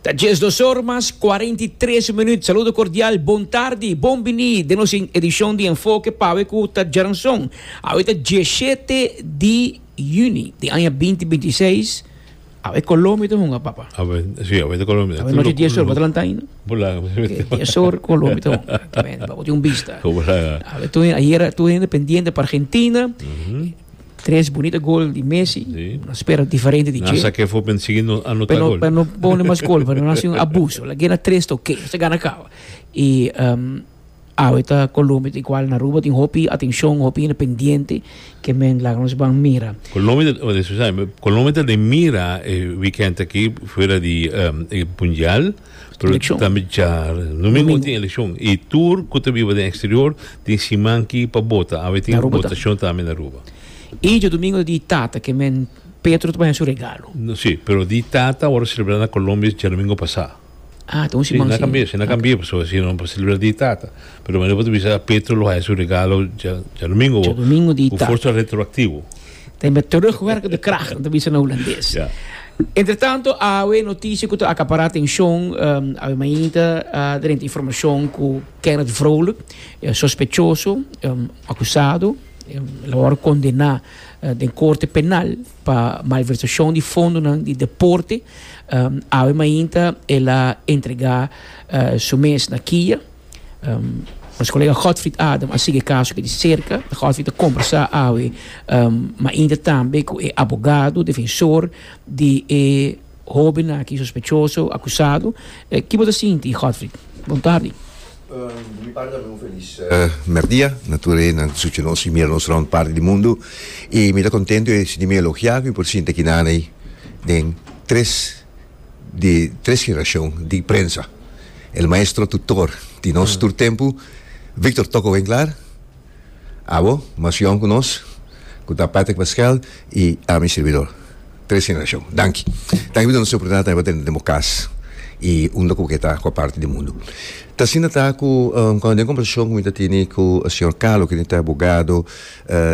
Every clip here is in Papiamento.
Ta djes dos or mas cuarenta y tres minuut. Saludo cordial, bon tardi, bon bini den nos edicion di Enfoke pawe cu ta djaranson. Awe ta dieshete di Juni di aña binti binti i seis. Awe Colombia ta hunga, papa. Awe, si, awe ta Colombia. Awe nochi dies or, bo ta lanta ainda? Bo laga mi smet. Oke, dies or Colombia ta hunga, ta bende, papa tin un bista. Bo laga. Awe tur, ayera tur hende pendiente pa Argentina. Tres bunita gol di Messi. Sí. Nos spera diferente di Nan che. sa ke for men sigui no anota Pero gol. pero no pone mas gol, pero nan si un abuso. La gena tres ta oké, se gana kaba. I ehm awe ta Colombia ta igual na Aruba tin hopi atencion, hopi hende pendiente ke men laga nos ban mira. Colombia ta, oh, disculpa, Colombia ta den mira e weekend aki fuera di ehm e mundial. Pero Eleccion. tambe djar Domingo Domingo. tin eleccion i tur cu ta biba den exterior tin siman ki pa bota awe tin Na Aruba ta. votacion tambe na Aruba I dje domingo ta di tata, ke men Petro ta baña su regalo. No, si pero di tata awor celebra na Colombia dje domingo pasa Ah, ta un si siman na si. cambia si na Ok. cambia paso si no pa celebra di tata pero manera bo ta bisa Petro lo haya su regalo dje dje domingo Dje domingo di cu tata. forsa retroactivo. Tem met terugwerkende de kracht, om te bisa na Hulandes. Ja. Entretanto, awe noticia ku ta akapara atenshon, um, awe mainta uh, drenta informashon ku Kenneth Vrolijk, eh, sospechoso, um, akusado, um, la wòrdu kondená uh, den korte penal pa malversashon di fondonan di deporte. Um, awe mainta e la entregá uh, su mes na Kia. Nos kolega Godfried Adam a sigui e kaso aki di serka. Godfried a kombersá awe mainta tambe ku e abogado defensor di e hóben aki sospechoso, akusado. Ki bo ta sinti, Godfried? Bon tardi. Di mi parti tambe un felis mèrdia na tur e nan ku suchi nos i mira nos rònt parti di mundu. I mi ta kontentu e sintimentu elogiá ku mi por sinti aki nan ei den tres di tres generashon di prensa, el maestro tutor di nos tur tempu, Victor Toko Winklar, Abo, mas yòn ku nos, ku ta Patrick Pascual i ami sirbidor. Tres generashon. Danki. Danki por nos oportunidat ta hiba den den bo kas i un loke bo ke ta kua parti di mundu. Ta asina ta ku, den konversashon ku mi ta tene ku señor Carlo, kende ta abogado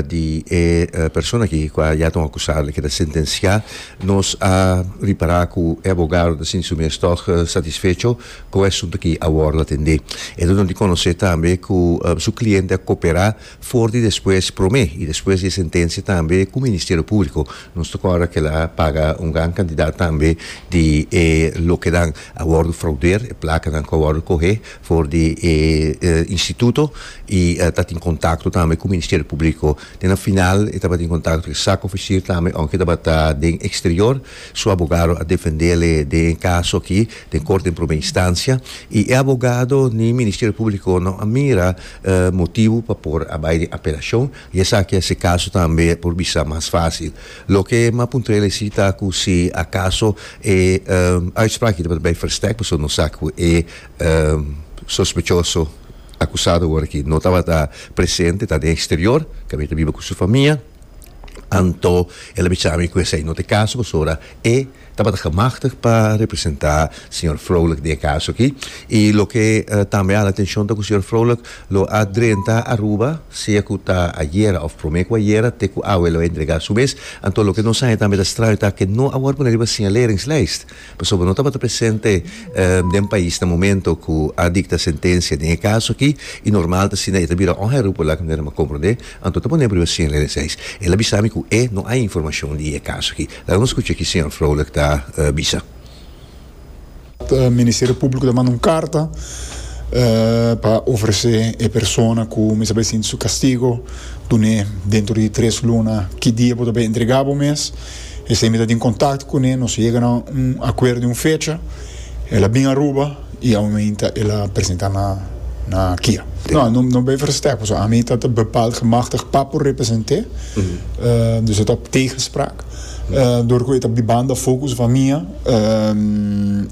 di e persona aki ku a ya ta un akusado, e ke ta sentensiá, nos a ripará ku e abogado ta sinti su mes tòg satisfecho ku e asuntu aki awor lo atendé. E duna di konosé tambe ku su kliente a koperá for di despues promé i despues di e sentensia tambe ku Ministerio Públiko. Nos ta kòrda ku el a paga un gran kantidat tambe di e lokenan a wòrdu fraudeer, e plakanan ku a wòrdu kohé for di e instituto y ta tin contacto tambe cu Ministerio Publico. Den a final e tabatin contacto cu e Zakoficier tambe aunke e tabata den exterior. Su abogado a defendele den e caso aki den Corte den Prome Instancia y e abogado ni Ministerio Publico no a mira motibo pa por a bay den apelacion y esaki a haci e caso tambe por bisa mas facil. Loke Mapuntrel a heci ta cu si acaso e uitspraak aki tabata bay versterk pasobra nos sa cu e Sospechoso akusado ora ki no tabata presente ta den eksterior, ka mi ta biba ku su famia, anto el a bicha mi ku esei no ta e kaso pasobra e tabata gemachtig pa representá señor Frolijk den e kaso aki. I loke tambe hala atenshon ta ku señor Frolijk lo a drenta Aruba, sea ku ta ayera òf promé ku ayera te ku awe lo a entregá su mes, anto loke nos haña tambe ta straño ta ke no a wòrdu pone riba señaleringslijst. Pasobra no tabata presente den pais na momento ku a dikta sentensia den e kaso aki i normal ta asina e ta bira oha e rupo laga manera m'a komprondé, anto ta pone primer sien lene seis. El a bisa mi ku e no ai informashon di e kaso aki. Laga nos skucha ki señor Froelich ta bisa. Ministerio Públiko ta manda un karta pa ofresé e persona ku mi sa bay sinti su kastigo dun'é dentro di tres luna ki dia bo ta bay entregá bo mes. Esei mi ta tin contacto cune, nos yega na un acuerdo di un fecha, el a bin Aruba y a un ainta el a presenta na na kia. No, no, no ben verstek, paso ami ta ta bepaald gemachtigd pa por represente, eh, dus e ta op tegenspraak. Eh, door cu e ta di banda focus van mia, eh,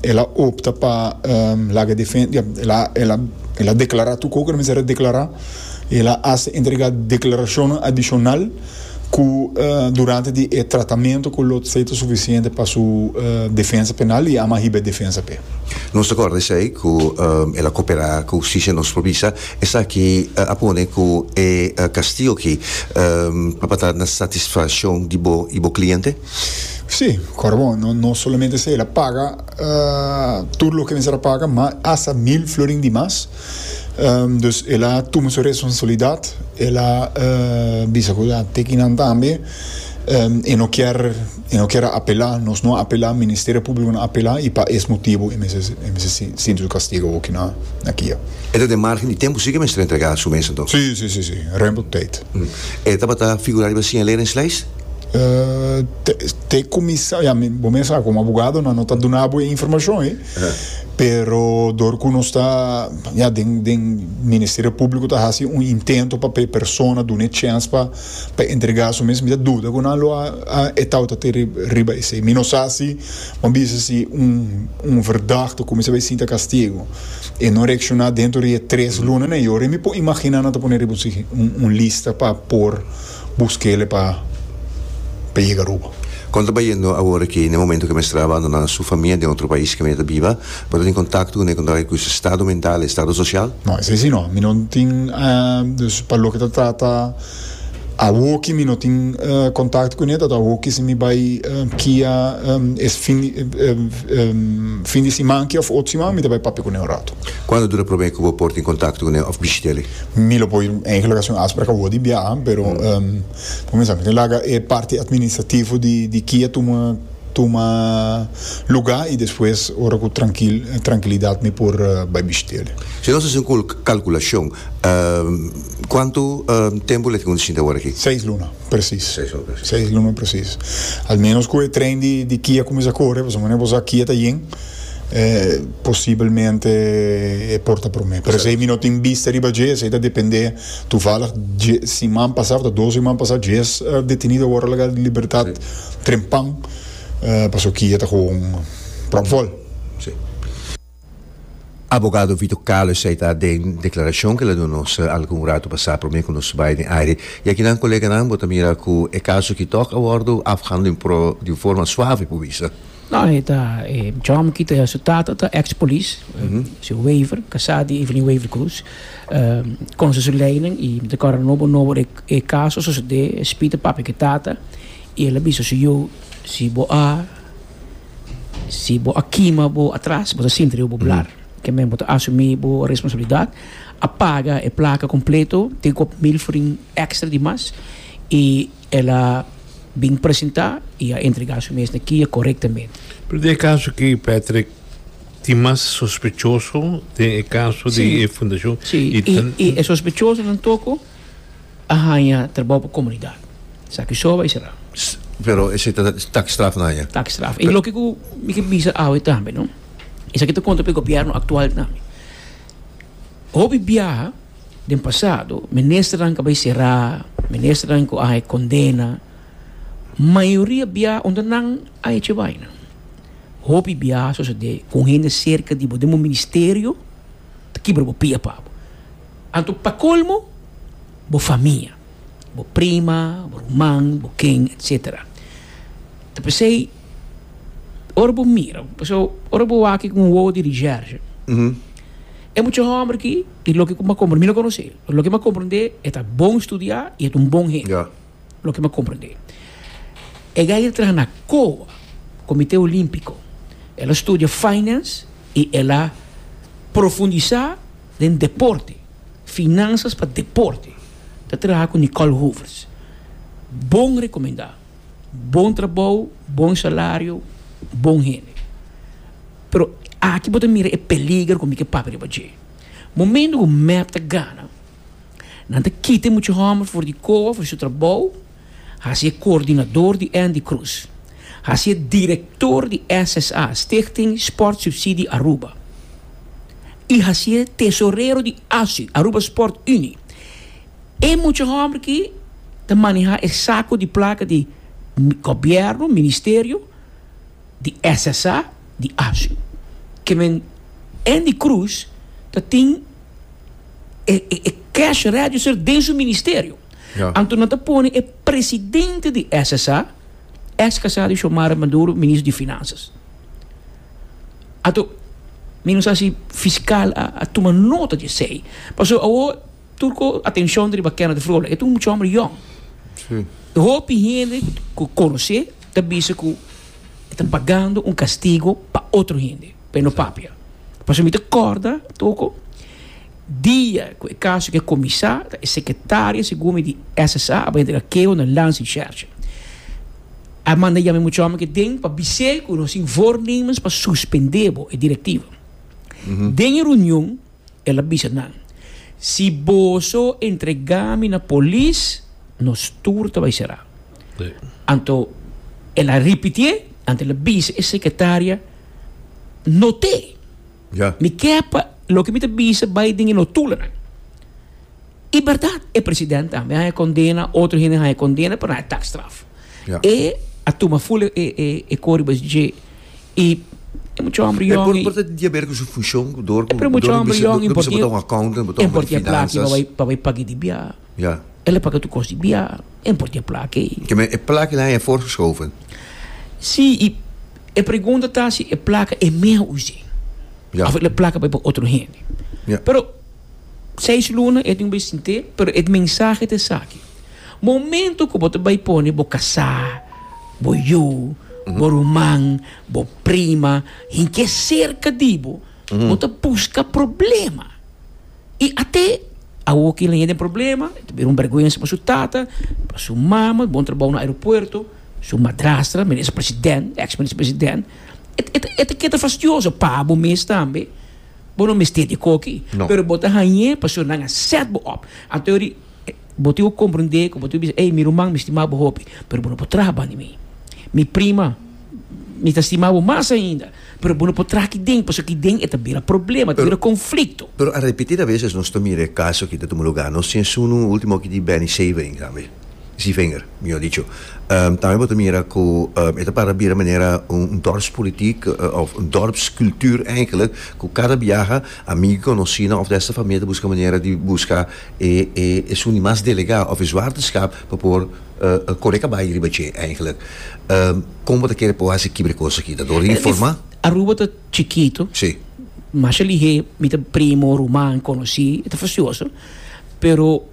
el a opta pa, eh, laga defen, ja, el a, el a, el a declara tu cu cu ta mester a declara, el a hace entrega declaracionnan adicional, cu durante di e tratamento cu lo tsey ta suficiente pa su defensa penal y ama hiba e defensa p'e. Nos ta corda esey cu el a coopera cu husticia nos por bisa esaki a pone cu e castigo aki tabata na satisfaccion di bo y bo cliente? Si, ora bon, no solamente esey el a paga tur loke mester a paga ma hasta mil florin di mas. Dus el a tuma su responsabilidat, el a bisa ku a teki nan tambe, e no kier, e no kier apelá, nos no a apelá, Ministerio Públiko no a apelá, i pa es motibu e mester, e mester sinti su kastigu aki na na kia. E ta den márgen di tempu si ke mester entregá su mes anto? Sí, sí, sí, sí, rèmpel tèit. E tabata figurá riba siñalera en slijs? Te te kuminsá, ya, mi, bo mes sa ku un abogadonan no ta duna bo e informashon ei. pero dor cu nos ta ya den den ministerio publico ta haci un intento pa pe persona duna e chance pa pa entrega su mes mi ta duda cu nan lo a a etau ta te riba esey mi no sa si bo a bisa si un un verdad ta cuminsa bay sinta castigo e no reacciona dentro di e tres luna na e ora mi por imagina nan ta pone riba un un lista pa por Bus kele pa pa yega Aruba. Kon ta bayendo awor aki na e momento ke mester a abandoná su famia den otro pais ke mi ta biba? Bo ta tin kontakto ku nekon ta bay ku su estado mental, estado sosial? No, esei si no. Mi no tin, dus pa loke ta trata awor ki mi no tin kontakto ku ne ta awor ki si mi bay kia es fin fin di siman aki of otro siman mi ta bay papia ku ne un rato. Kuantu dura prome ku bo por tin kontakto ku ne of bishit'e? Mi lo por enkele okasion afspraak a wòrdu di biaha, pero pa kuminsá mi tin laga e parti atministrativo di di kia tuma tuma lugá i despues ora ku trankil trankilidat mi por bai bishit'el. Si nos hasi un kalkulashon, kuantu tempu el a tin ku nos shinti awor aki? Seis luna. Presis. Seis lumen presis. Al menos cu e tren di Kia cuminsa core, pasobra manera bo sa Kia ta yen, posibelmente e por ta prome. Pero esey mi no tin bista riba dje, esey ta depende. Toevallig dje siman pasa, of ta dos siman pasa, djes detenido a worde laga di libertad trempan, pasobra Kia ta gewoon prop vol. Abogado Vito Calo esei ta den declaracion cu el a duna nos algun rato pasa prome cu nos bay den aire y aki nan coleganan bo ta mira cu e caso aki tok a wordo afhandla den pro den forma suave por bisa. No e ta e jom aki ta su tata ta ex police su Wever casa di Evelyn Wever Cruz conse su ley nan y mi ta corda nobo nobo den e caso sosode e spita papia cu e tata y el a bisa su yu si bo a Si bo a kima bo atras, bo ta sinti riba bo blar. Ke men, bo ta asumí bo responsabilidat, a paga e plaka kompleto, tin kop mil forin èkstra di mas, i el a bin presentá i a entregá su mes na kia korektamente. Pero den e kaso aki, Patrick, tin mas sospechoso den e kaso di e fundashon, i ta. Si, i e sospechosonan toko. a haña trabou pa komunidat. Esaki so bai sera. Pero esei ta takstraf na haña. Takstraf. I loke ku mi ke bisa awe tambe, no? Esaki ta konta pa e gobièrnu aktual tambe. Hopi biaha den pasado, ministernan ku a bai será, ministernan ku a haña kondena, mayoria biaha unda nan a hecho e baina. Hopi biaha a sosodé ku un hende serka di bo den bo ministerio ta kibra bo pia pa bo. Anto pa colmo bo famia, bo prima, bo ruman, bo ken etc. Ta pesey ora bo mira, paso ora bo wak cu un wowo di recherche, e mucha homber aki y loke cu m'a comprende, mi no conoce, pero loke m'a comprende e ta bon studia y e ta un bon hende, loke m'a comprende. E gay el traha na coa, Comite Olimpico, el a studia finance y el a profundisa. Den deporte, Finanzas pa deporte ta traha ku Nicole Hoeverts. Bon rekomendá, bon trabou, bon salario, bon hende. Pero aki bo ta mira e peliger ku mi ke papia riba dje. Momentu ku mep ta gana, nan ta kita e mucha hòmber for di koba, for di su trabou, Hasi e coordinador di Andy Cruz. Hasi e director di SSA, Stichting Sport Subsidie Aruba. Y hasi e tesorero di ASU, Aruba Sport Unie. E mucha homber aki ta maneha e saco di placa di Gobierno, Ministerio. di SSA di Asu, ke men en di Cruz ta tin e e cash register den su ministerio. Ja. Anto nan ta pone e presidente di SSA, ex casado di Xiomara Maduro, ministro di Finanzas. Anto mi no sa si fiscal a a tuma nota di esei. Paso awor tur cu atencion ta riba Kenneth Vrolijk. E ta un mucha homber yong. Si. Hopi hende cu conoce. ta bisa cu e ta pagando un castigo pa otro hende, pa e no papia. Pasobra mi ta corda toco dia cu e caso aki a cuminsa, ta e secretaria, segun mi, di SSA a bay entrega keo na Lansing Church. A manda yama e mucha homber aki den pa bis'é cu nos tin voornemens pa suspendebo, e directiva. Den e reunion. El a bisa nan, Si boso entrega mi na polis, nos tur ta bai será. Anto el a ripitié, anto el a bisa e sekretaria, Not'é! Mi ke pa loke mi ta bisa bai den e notulanan. I berdad, e president tambe haña kondena, otro hende haña kondena, pero nae tak straf. Ja. E a tuma ful e, e, e, e kori bes dje. I e mucha homber E yòn por, i por ta di haber ku su funshon, ku dor, e ku pero mucha dor homber bisa, yòn i dor bisa bota porti un accountant, bota e homber di porti a plaki pa finanzas. bai, pa bai pag'é di bia. Ja. El a paga tur kos di bia, e porti a plaki. Ke men, e plaki la haña voorgeschoven. Sí, i e pregunta ta si e plaka e mihua us'é. Ja. Of e plaka bai pa otro hende. Ja. Pero Seis luna e tin bay sint'é, pero e mensahe ta esaki, Momento cu bo ta bay pone bo casá, bo yu, bo ruman, bo prima, hinch'é cerca di bo, bo ta busca problema. Y ate awo cu e leña den problema, e ta bira un berguensa pa su tata, pa su mama, bon trabao na aeropuerto, su madrastra, minister president, ex minister president, e ta keda fastioso, pa bo mes tambe. Bo no mester di koki, pero bo ta hañ'é pasobra nan a sèt bo op. Anto yori, bo tin ku komprondé ku bo tin ku bisa, Ey, mi ruman, mi stima bo hopi, pero bo no por traha banda mi. Mi prima, mi ta stima bo mas ainda, pero bo no por traha aki den, pasobra aki den e ta bira problema, e ta bira konflikto. Pero a repetida veses nos ta mira e kaso ki ta tuma lugá nos. Si esuna un último oki di Benny Sabin, tambe. Si vinger, mihor dicho. Tambe bo ta mira ku e ta para bira manera un dorpspolitiek òf un dorpskultuur eigentlik, ku kada biaha amigu, konosina òf dèster famia ta buska manera di buska e e e su mas delegá òf e zwarteskap pa por kore kabayo riba dje eigentlik. Kon bo ta kere por hasi kiba di kos aki? Ta dor di informá? Aruba ta chikitu. Si. Masha lihé mi ta primo, ruman, konosí, e ta fastioso, pero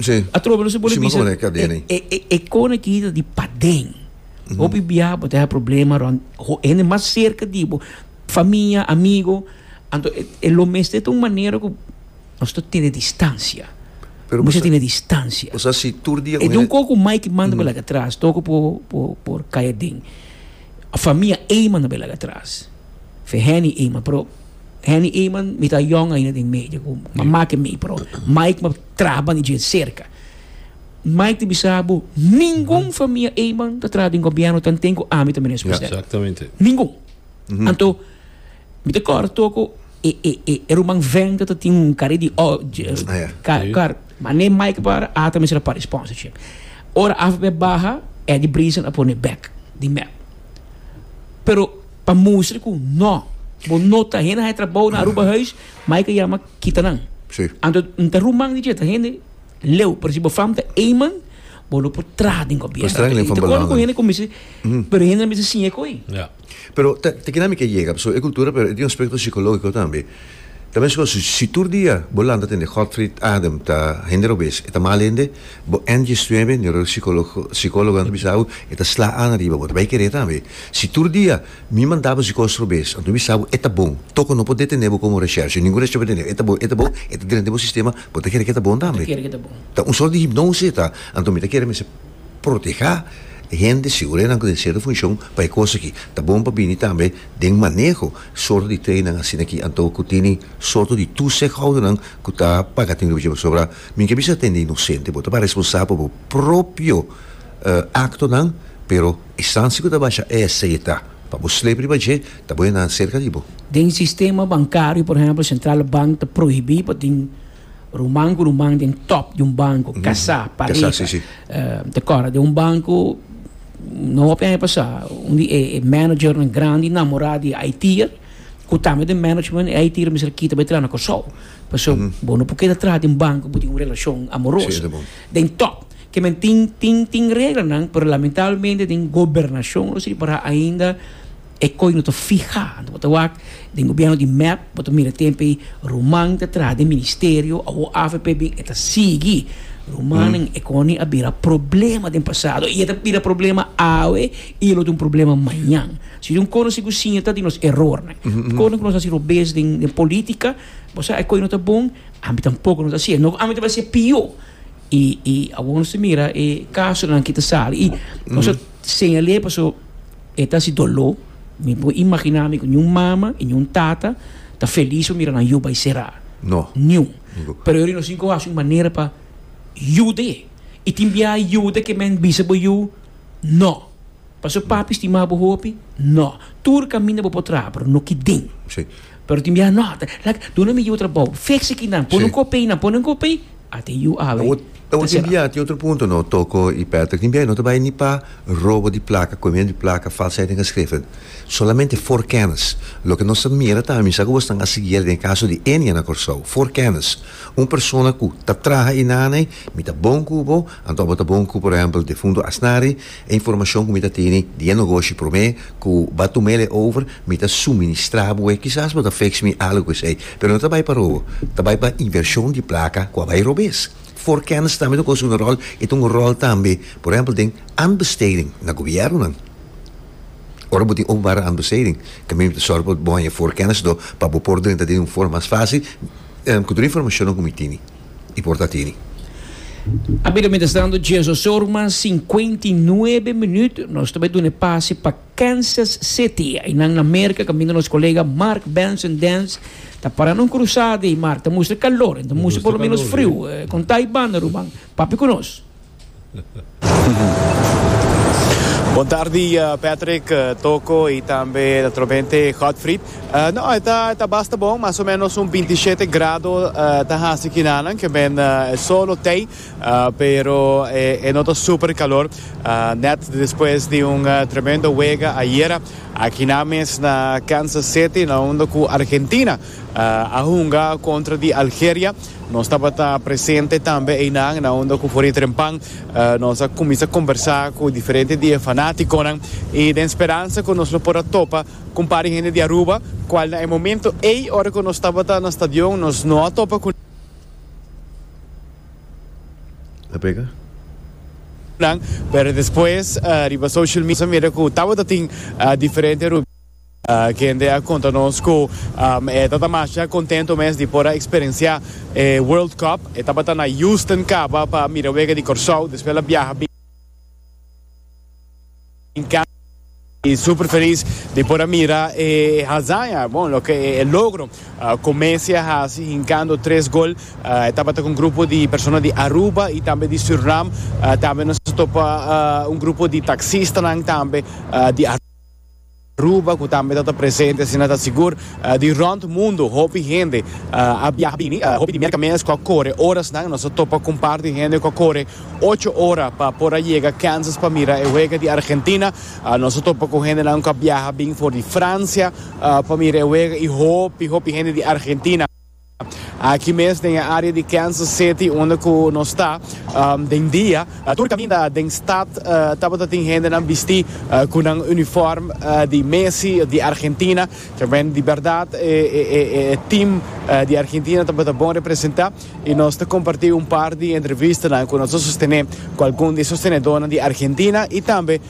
Sí. A trobe no se pone Sí, ma bisa. como de cadena ahí? E, e, e cone que está de paden. Hopi biaha bo te ha problema rond ho- hende más cerca di bo, familia, amigo. Anto e, e lo mes te un manera que nos to tiene distancia. Pero Mucha bosa- tiene distancia. Bosa si tur dia E con de un hende- coco mai que manda belaga atrás, toco por, por, por cae den. A familia Eyman a belaga atrás. Fe Henny Eyman, pero Henny Eyman mi ta young ainda den medio, cu mama que mi, pero Mike ma Traha ban di djent serka. Mike ta bisa bo, ningun famia eyman ta traha den gobierno tan ten ku ami ta minister president. Ningun. Anto, mi ta kòrda toko e e e e ruman Venter ta tin un kari di kar, mane Mike a para a ta mester a para e sponsorship. Ora afp a baha, Eddie Brison a pone bek di mep. Pero pa mustra ku no, bo no ta hende haña trabou na Aruba huis, Mike a yama kita nan. Sí. Anto N ta ruman di dje ta hende leu, pero si bo fam ta Eyman, bo lo por traha den gobierno. Bo streng leu fam balanga. Con hende con mester, mm. pero hende mester sin e coi. Ja. Pero ta, ta kina mi ke yega, so e cultura pero e tin aspecto psicologico tambe. Ta mes cosa, si tur dia bo lanta tende Godfried Adem ta hende robes, e ta mal hende, bo en djes nuebe, neuro psicologo, psicologo anto bisa awu, e ta sla an riba bo, ta bay kere tambe. Si tur dia Mi manda bo zikos robes, anto mi sa bo e ta bon. Toko no por detené bo komo reshershe, ningun reshershe no por detené bo. E ta bon, e ta bon, e ta drenta den bo sistema, bo ta kere ku e ta bon tambe. Ta un sort di hipnosis e ta, anto mi ta kere mester protehá hende, segurianan ku den sierto funshon pa e kos akí. Ta bon pa bini tambe den maneho sorto di treinan asina akí, anto ku tini sorto di tuuzichoudernan ku ta paga tint'e buchera pasobra mi ke bisa hende inosente, bo ta para responsabel pa bo propio aktonan, pero. Distansia ku ta basha esta i ta pa bo sleep riba dje ta bo e nan serka di bo. Den sistema bankario, por ehèmpel, Sentral Bank ta prohibí pa tin ruman ku ruman den tòp di un banko, kasá, pareka. Ta kòrda den un banko no hopi aña pasá unda e managernan grandi namorá di e IT'er ku tambe den management e IT'er mester a kita bo e traha na Kòrsou. Pasobra bo no por keda traha den banko ku bo tin un relashon amoroso den tòp. Ke men tin tin tin reglanan, pero lamentablemente den gobernashon lo siña pará ainda e koi no ta fihá. Anto bo ta wak den gobièrnu di mep, bo ta mira tempe ruman ta traha den ministerio, awo avp bin e ta sigui. Rumannan e kòni a bira problema den pasado i e ta bira problema awe i e lo ta un problema mañan. Si tin un kosnan si ku siña ta di nos erornan. Kosnan ku nos a hasi robes den den polítika, bo sa e koi no ta bon, ambi tampoko no ta hasié. No ku ambi ta bira hasié pió. Y y awor nos ta mira e casonan ki ta sali y nos ta señal'e paso e ta haci dolor. Mi por imagina mi cu ni un mama y ni un tata ta feliz pa mira nan yu bay cera. No. Ni un. Ningun. Pero yori nos tin cu haci un manera pa yud'e. Y tin biaha yuda ke men bisa bo yu, no. Paso papi stima bo hopi? No. Tur caminda bo por traha, pero no ki den. Sí. Pero tin biaha no, ta like duna mi yu trabao, fix aki nan, ponen Sí. copey nan, ponen copey, a te yu awe Awor, ta awor tin cerrado. biaha tin otro punto no toko y Patrick, tin biaha no ta bay ni pa robo di placa, cohimiento di placa, falsheid den geschriften, solamente for kennis. Loke nos ta mira ta misa cu bo stan a siguier den e caso di Enia na Corsou, for kennis. Un persona cu ta traha y naney, mi ta bon cu bo, anto bo ta bon cu por ehempel defunto Asnari, E informashon ku mi ta tene di e nogoshi promé ku ba tuma el e over, mi ta suministrá bo e. Kisas bo ta feks mi algu ku esei, pero no ta bai pa robo, ta bai pa invershon di plaka ku a bai robes. For kennis tambe ta kos unu ròl, i ta un ròl tambe, por ehèmpel, den aanbesteding na gobièrnunan. Ora bo tin openbare aanbesteding, tambe mi ta sòru pa bo haña for kennis do, pa bo por drenta den di un forma mas fásil, ku tur e informashonnan ku mi tene. i por ta tini. A bida mientras tanto Jesus se urman cincuenta y nuebe minuut nos ta bai duna e pase pa Kansas City aynan na Merca caminda nos colega Mark Benson Dance ta para na un cruzada y Mark ta mustra calor y ta mustra por lo menos friu conta y banda ruman papi cu nos. Bon tardi Patrick, Toko y tambe naturalmente Godfried. No, e ta, e ta basta bon, mas o menos un binti shete grado ta haci kinanan, ke men e sol lo tey, pero e, e no ta super calor. Net despues di un tremendo wega ayera, aki nan mes na Kansas City, na unda cu Argentina A hunga kontra di Algeria. Nos tabata presente tambe einan na unda ku for e trempan. Nos a kuminsá kombersá ku diferente di e fanátikonan i den speransa ku nos lo por a topa ku un par di hende di Aruba kual na e momento ei ora ku nos tabata na stadion nos no a topa ku nan pero despues riba social media nos a mira ku tabata tin diferente. Kende a konta nos ku e ta tamasha kontento mes di por a eksperensiá e World Cup. E tabata na Houston kaba pa a mira wega di Kòrsou. Despues el a biaha bin kaba i super felis di por a mira e hazaña, bon, loke e logro ku Messi a hasi hinkando tres gol. E tabata ku un grupo di persona di Aruba i tambe di Surinam. Tambe nos a topa un grupo di taksistanan tambe di Aruba. Aruba cu tambe ta ta presente asina ta sigur di rond mundo hopi hende a biaha bini hopi di mierka mes cu a core orasnan nos a topa cu un par di hende cu a core ocho ora pa por a yega Kansas pa mira e wega di Argentina nos a topa cu hendenan cu a biaha bin for di Francia pa mira e wega y hopi hopi hende di Argentina Aki mes den e área di Kansas City unda ku nos ta den dia, tur kaminda den stat tabata tin hendenan bistí ku nan unifòrm di Messi di Argentina. Ta bende di bèrdat e tim di Argentina tabata bon representá i nos ta kompartí un par di entrevistanan ku nos a sostené ku algun di e sostenedónan di Argentina i tambe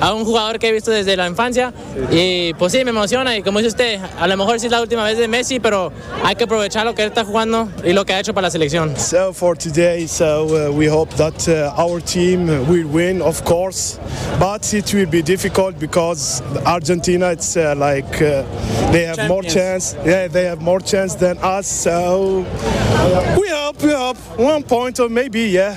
A un hugador ke bisto desde la infancia y por si me emociona y como dice usted a lo mejor si es la ultima vez de Messi pero hay ke aprovecha loke el ta hugando y loke ha hecho pa la seleccion. So for today so we hope dat our team will win of course but it will be difficult because Argentina it's like they have more chance yeah they have more chance than us so we hope we hope one point or maybe yeah.